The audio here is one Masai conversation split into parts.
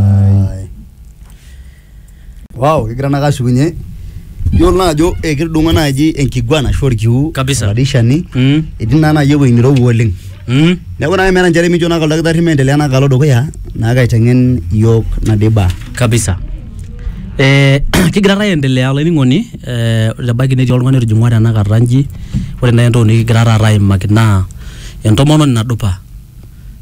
Ai. Wow, kigira naa kashukunye. Yiolo naa ajo eh, kitudung'o naaji enkiguana ashu orkiu Kabisa. oladishani Mm. etii naa naaji ewueji nirowua oleng. Mm. Neeku naa meeta nchere mijo naa oldakitari meendelea naa kalo dukuya naa kaiteng'en iyiok nadiba. kabisa eh, kigira taa aendelea olainining'oni eh, ebaiki netii oltung'ani otijing'ua tenakata nji ore nai entoki nikigira taata aimaki naa entomononi nadupa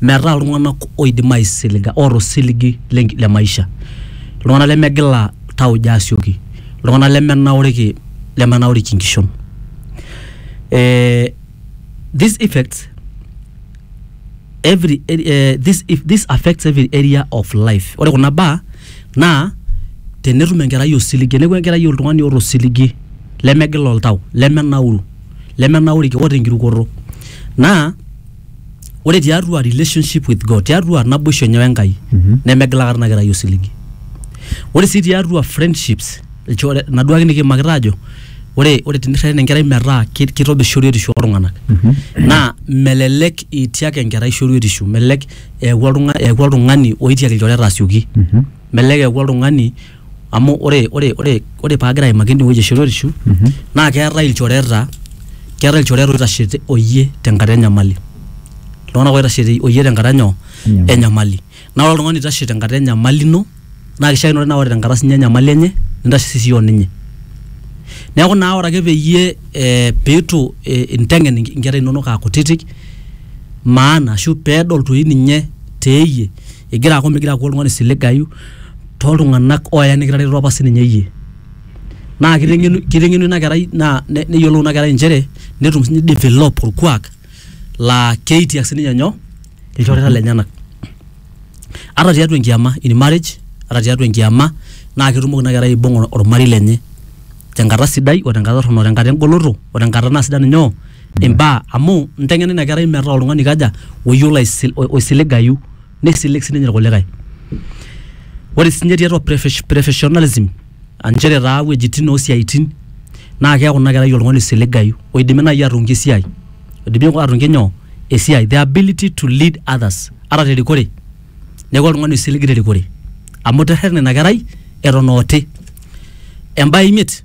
metaa iltung'anak oidim aisiliga oota osiligi lenki le maisha iltung'anak lemegila tauja asioki iltung'anak lemenauriki lemenauriki inkishon eh, this effects every eh, this, if this affects every area of life ore kuna baa naa tenetum enkerai osiligi teneku enkerai oltung'ani oota osiligi lemegila oltau lemenauru lemenauriki oota enkirukoto naa ore tiatua relationship with God, tiatua naboisho enye wenkai Mhm. nemegila aikata ina kerai osiligi. Ore sii tiatua friendships ilchore naduo ake nikiimakita aajo ore ore tenirreten enkerai metaa ki- kitobir shoruetisho oltung'anak Mhm. naa melelek itiak enkerai shoruetisho, melelek eeku oltung'a- eeku oltung'ani oitiak ilchoreta asioki, Mhm. melelek eeku oltung'ani amu ore ore ore ore paagira aimaki ene wueji e shoruetishu naa keetae ilchoreta keetae ilchoreta oitashe te- oyie tenkata enyamali iltung'anak oitashe te- oyie tenkata nyoo Enyamali. enyamali naa ore oltung'ani oitashe tenkata enyamali ino naa kishiakinore naa ore tenkata sinye enyamali enye nintashe sii siyie oninye neeku naa ore ake peyie eh, piitu eh, inteng'en inke- inkera inonok akutitik maana ashu peedol toi ninye teeyie. igira aaku migira aaku oltung'ani siligayu toltung'anak oya nikitareto apa sininye iyie naa kiteng'enu kiteng'enu ina kerai naa ne neyiolou ina kerai inchere netum sinye ni develop orkuak laa keitiak sininye nyoo ilchoreta lenyenak ata tiatua enkiama in marriage ata tiatua enkiama naa ketumoki ina kerai aibung'a ormarei lenye tenkata sidai o tenkata torrono o tenkata engoloto o tenkata naa sida ninye oo. imbaa amu inteng'ena ina kerai metaa oltung'ani oikaja oyiolo aisi oisiligayu neisilig sininye irkulikae ore sinye tiatua profes professionalism anchere taa iwuejitin osiaitin naa keeku ina kerai oltung'ani oisiligayu oidimi naaji atungie esiai oidimi atungie nyoo esiai the ability to lead others ata terikore neeku oltung'ani oisilig terikore amu iterrerene ina kerai eton aa oti embaye imiet.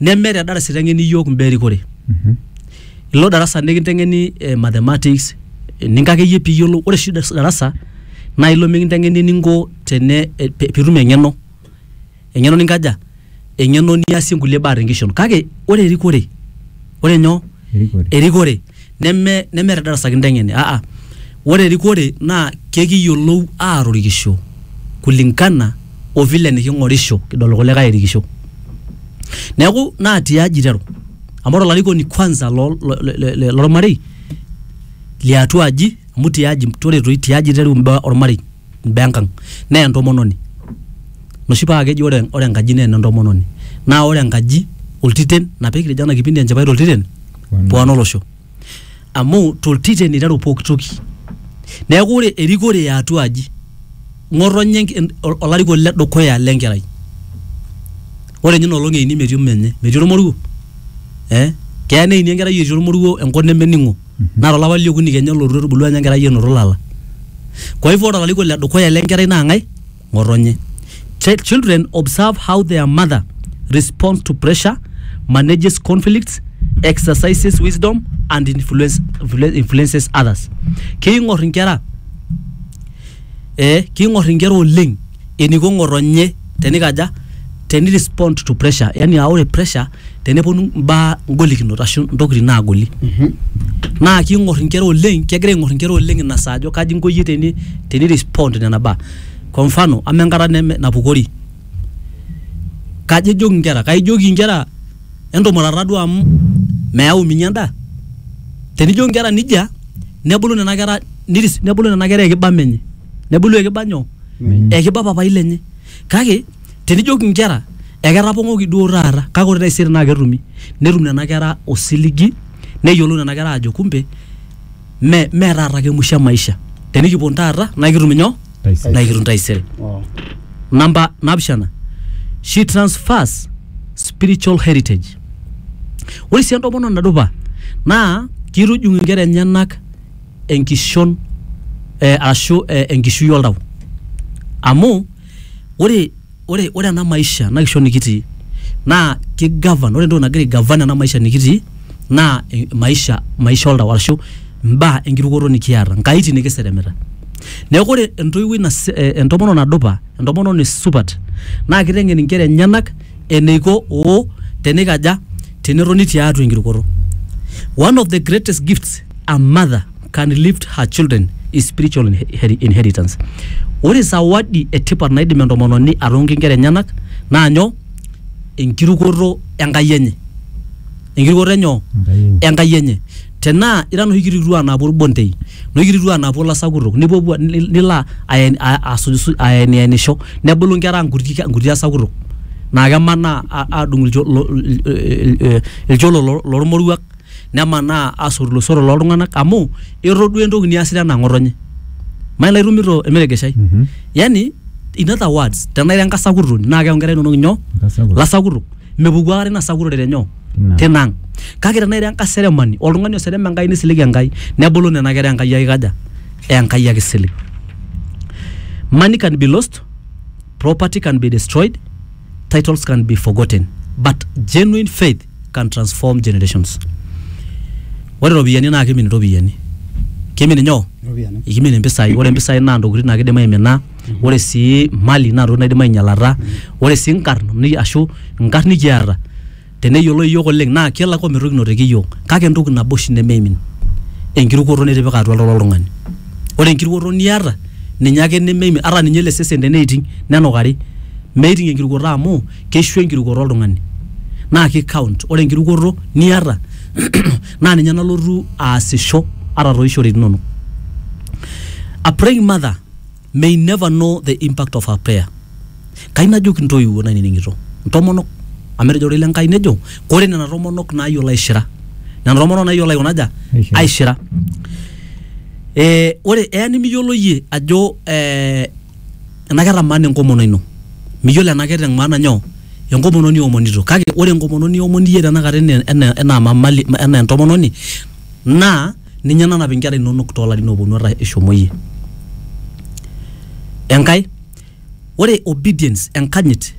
neme te darasa iteng'eni iyiook imbaa erikore ilo darasa nikinteng'eni eh, mathematics eninko akeyie piiyiolou ore oshi das- darasa naa ilo mikinteng'eni eninko tene eh, pe- piitum eng'eno eng'eno ninkaja eng'eno niasie inkulie baa tenkishon kake ore erikore ore nyoo Erikore. erikore neme neme te darasa kinteng'eni aa ore erikore naa kekiyolou aatorikisho kulingana o vile neking'orisho kidol irkulikai erikisho. Neeku naa ti aji iteru amu ore olarikoni kwanza lo le le lormarei li atua aji amu ti aji ore toi ti aji iteru mbaa ormarei. imbaa enkang naa entomononi noshi paa keji ore, ore enkaji naa enentomononi naa ore enkaji oltiten ina pekijo ena kipindi enchipai toltiten pwan olosho amu toltiten iteru pokitoki neeku ore erikore eatua aji ng'otonye enk olarikoni ledukuya lenkerai ore inye inolong eini metii menye metii ormoruo eh keya neini enkerai etii ormoruo enkop nemening'o. naa tolapa liokuni kenya olotu etubulua ninye enkerai enoto ilala kwa hivyo ore olarikoni le dukuya le nkerai naa ng'ae ng'otonye Ch- children observe how their mother responds to pressure manages conflicts exercises wisdom and influence, influences others keing'or inkera eh, king'or inkera oleng eniko ng'otonye tenikaja teni respond to pressure yani aa ore pressure teneponu imbaa ingolikinot ashu intokitin naagoli naa king'or inkera oleng kegira aing'or inkera oleng ina saa ajo kaji inko iyie teni, teni respond nena baa kwa mfano amaa enkata neme napukori kaji ejoki inkera kaijoki inkera entumurata duo amu meyau ninye endaa tenijo inkera nijia nebulu nena kera niris nebulu nena kera ekiba menye nebulu ekiba nyoo ekiba papai lenye kake tenijoki inkera eketapong'oki duo taata kake ore taisere naa ketumi netum nena kera osiligi neyiolou nena kera ajo kumbe. me me taata ake musho e maisha tenikipon taata naa kitum inyoo Taisere. naa kitum taisere Oh. namba napishana she transfers spiritual heritage ore sii entomononi nadupa naa kitujung inkera enyenak enkishon eh, ashu eh, enkishui oltau amu ore ore ore ena maisha ena kishon nikitii naa ki govern ore entoki nagira ai govern ena maisha nikitii naa maisha maisha oltau arashu imbaa enkirukoto nikiata inkaitin nikiseremeta neeku ore entoiwuoi nase entomononi nadupa entomononi supat naa kiteng'en inkera enyenak eneiko oo tenikaja tenetoni tiatua enkirukoto one of the greatest gifts a mother. can lift her children is spiritual inher- inheritance ore zawadi etipat naidim entomononi atonki inkera enyenak naa nyoo enkirukoto enkai enye enkirukoto enyoo enkai enye tenaa ira noshi kititua naapuo irbondei noshi kititua naapuo ilasakutok nipuopuo ni- nilo aen- a- asuj- aenianisho nebulu inkera ang nkuti nkuti asakutok naa kemanaa a- adung ilcho- lo- il- il- il- ilcholo lo- lormoruak nemanaa asotu iloisotok loo ltung'ana amu etodua entoki niasita anaa ng'otonye. Mayiolo anaa itumito ilmeregeshi. Yani in other words tenaa ira enkasakuroni naa keaku inkera inono inyoo? Nkasakurok. Ilasakurok. Mepuku aikata ina sakurore te nyoo? Tina. Tina ang'. Kake tenaa ira enkaseremani, oltung'ani oserem Enkai nisilig Enkai nebulu nena kera Enkai eikaja? Enkai ake isilig. Money can be lost, property can be destroyed, titles can be forgotten but genuine faith... can transform generations ore iropiyiani naa kimin iropiyiani kimin inyoo Iropiyiani. ikimin impisai ore impisai naa intokitin naa kidim aimina ore sii mali naa intokitin naidim ainyialata ore sii inkarn ni- ashu inkarn nikiata teneyioloi iyiok oleng naa kelak ometukinoteki iyiok kake entoki nabo oshi nemeimin enkirukoto nitipika atua oltau loltung'ani ore enkirukoto niata ninye ake nemeimin ata ninye ele sesen teneiting nenukari meiting enkirukoto amu keishu enkirukoto oltung'ani naa ki count ore enkirukoto niata naa ninye nalotu aasisho ata tooishoritin inonok. A praying mother may never know the impact of her prayer. Kai najoki intoiwuo nainining'ito, intomonok amu etejo ororei le Nkai nejo kore nena tomonok naayiolo aishira, nena tomonok naayiolo aikuna aja, Aishira. aishira. Eh, ore eya nimiyiolo iyie ajo eh, Enaa keeta maana enkomono ino? Miyiolo enaa keeta maana nyoo? Enkomono niomonito. Kake ore enkomono niomon iyie tenakata enaa enaa mamali enaa entomononi naa ninye nanap inkera inonok too larin ooponu ata ishomo iyie. Enkae, ore obedience enkanyit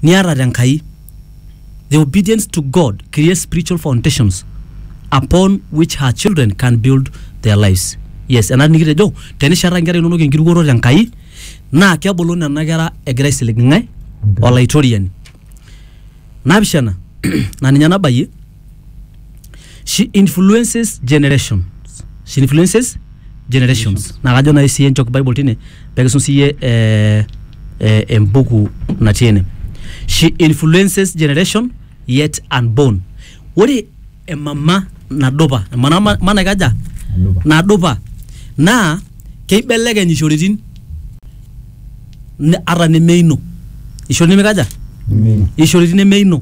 niata te Enkai. The obedience to God creates spiritual foundations upon which her children can build their lives. Yes, ena nikitejo tenishata nkera inonok enkirukoto te Nkai naa kebulu nena kera egira aisilig ng'ae? Olaitoriani. Naapishana naa ninye nabayie she influences generations she influences generations naa kajo nai siye nchok bible tine pekisum siye eh, eh, embuku natii ene she influences generation yet unborn ore emama nadupa emana ma- ma naikaja nadupa naa keibelekeny ishoritin ne- ata nemeino ishori nemekaja ishoritin nemeino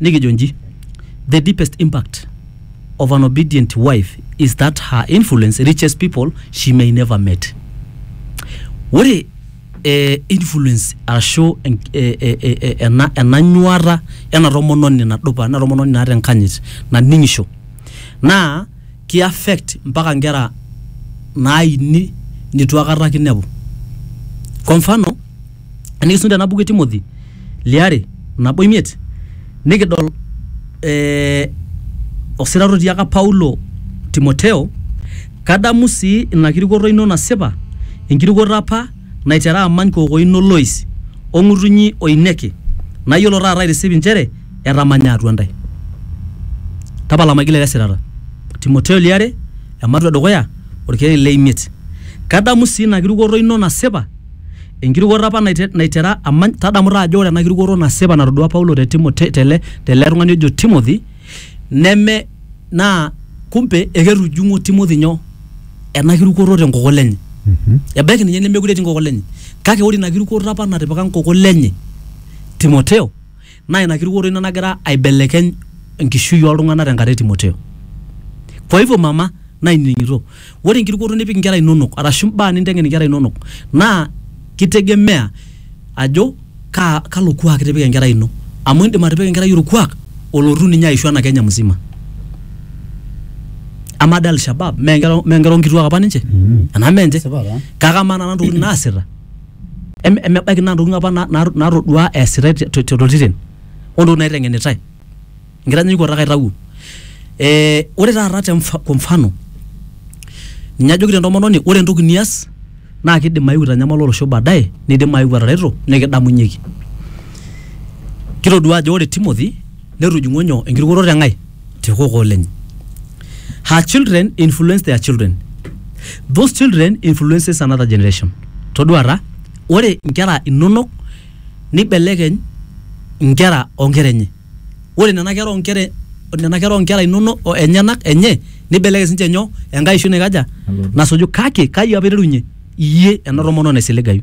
Nikijo nji, The deepest impact of an obedient wife is that her influence reaches people she may never met. Ore eh, influence arashu en- eh, eh, eh, eh, ena ena nyuata ena tomononi nadupa, ena tomononi naata enkanyit naning'isho naa ki affect mpaka nkera naaini nitu akata kinepu. Kwa mfano, Enikisum tena buku e Timothy liare nabo imiet nikidol ee osirata otiaka Paulo Timoteo, kadamu sii ina kirukoto ino nasipa, enkirukoto apa naitera amany kookoi ino Lois o ng'utunyi o Ineke, nayiolo taata aitisip inchere etamanya atua intae. Tapala maigil ele sirata. Timoteo liare, ematua e dukuya, olkereri le imiet. Kadamu sii ina kirukoto ino nasipa Enkirukoto apa naitera amany, tadamu taa ajo ore ena kirukoto nasipa natodua Paulo te Timo, te, tele, tele tung'ani ojo Timothy, neme naa kumbe eketujung'o Timothy nyoo? Ena kirukoto te nkokol enye. Ebaiki ninye nemekure etii nkokol enye. Kake ore ina kirukoto apa natipika nkokol enye Timoteo, Naa ina kirukoto ina nagira aibelekeny enkishui oltung'ana tenkata e Timoteo. Kwa hivyo mama nainining'ito, ore enkirukoto nipik inkera inonok arashu imbaa ninteng'en inkera inonok naa kitegemea ajo kaa, kalo kuak itipika enkerai ino. Amu indim atipika enkerai olkuak olotu ninye aishu ena Kenya mzima. Amaa dii Alshabaab mee inkera, mee inkera o nkituak apa ninche? Enaa mee ninche? Kake amaa nena tokitin naasita? em- emebaiki naa ntokitin apa na- na- natoduaa eesitae te- te- toltiren ontokitin naiteng'enitae enkitanyanyukoto ake aitawuo ee ore taata te mfa- kwa mfano ninye ajoki entomononi ore entoki nias naa kidim ayeu aitanyamala olosho baadaye nidim ayeu atareto nikidamunyieki kitoduaa ajo ore Timothy netujung'o nyoo enkirukoto te Nkai te kokoo lenye her children influence their children those children influences another generation toduata ore inkera inonok nibelekeny inkera onkera enye ore nena kera onkera nena kera onkera inonok o- enyenak enye nibelekeny sinche nyoo enkae oishu naikaja nasuju kake kai apa iterunye iyie ena tomononi naisiligayu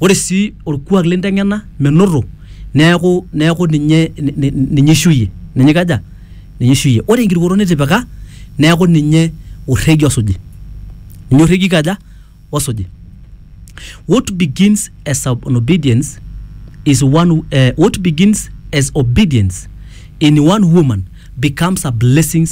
Ore sii olkuak linteng'ena menoto neaku, neaku ninye, ninye eishuyie. Ninye eikaja? Ninye eishuyie. Ore enkirukoto nitipika neaku ninye olrregie osuji. Ninye olrregie oikaja? Osuji. What begins as an obedience is one, uh, what begins as obedience in one woman becomes a blessings